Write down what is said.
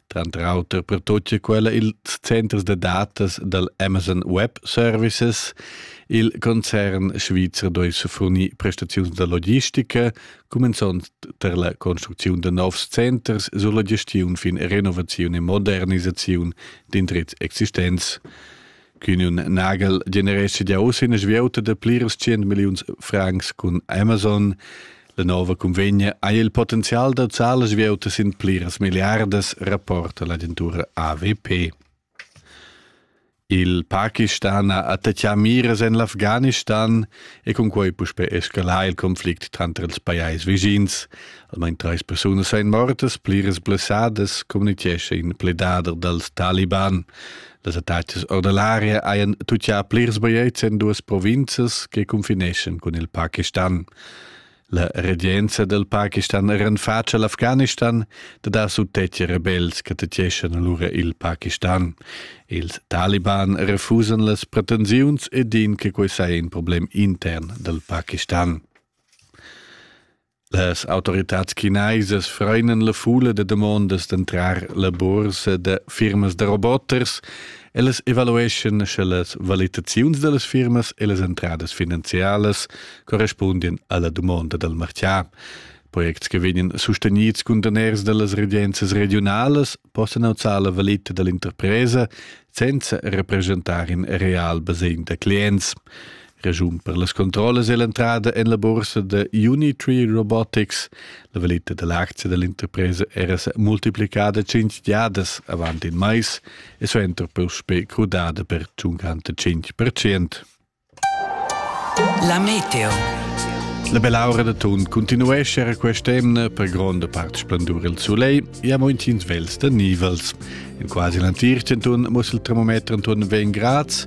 tranter auter per tut che quella ils centers da datas dal Amazon Web Services. Il concern svizzer doi su fornir prestaziuns da logistica, cumenzond per la construcziun da novs centers sulla gestiun fin renovazione e modernisazione d'indrizz existents. Quin un nagel generesce ja uss ina svieuta da plirs 100 milliuns francs cun Amazon. La nova convegna ha il potenzial da zar las vieutas in pliras miliardas, rapporta l'agentura AWP. Il Pakistan ha attaccà miras en l'Afghanistan e con quei puspe escalà il conflict tranter els pajais vischins. Almain treis persunas ein mortas, pliras blessadas, communichescha in pledader dals Taliban. Las attacas ordinaria hajan tuttà plirs bajetgs en duas provinzas che confineschan cun il Pakistan. La regenza del Pakistan era en faccia l'Afghanistan da dar suttetgi rebels che tetgeschan allora il Pakistan. Ils taliban refusan las pretensiuns e din che quei sei in problem intern del Pakistan. Las autoritads chinaisas freinen la fula da demondas d'entrar la bursa da firmas da roboters e las evalueschan sche las valitaziuns da las firmas e las entradas finanzialas correspundian alla dumonda dal martià. Projekts che vegnan sustenids cun daners da las regenzas regiunalas possan auzar la valita dall'interpresa senza representar in real basegn da clients. Regiun per las controllas e l'entrada en la bursa da Unitree Robotics. La valita da l'aczia da l'interpresa era sa multiplicada cinc giadas avant in mais e suenter puspè crudada per 55%. La meteo. La bell'aura da Tun continuesce era quest'emna per gronda part splendur il soleil e amo intgins vels da nivels. In quasi l'antir Tun muss il termometer intorno 20 grads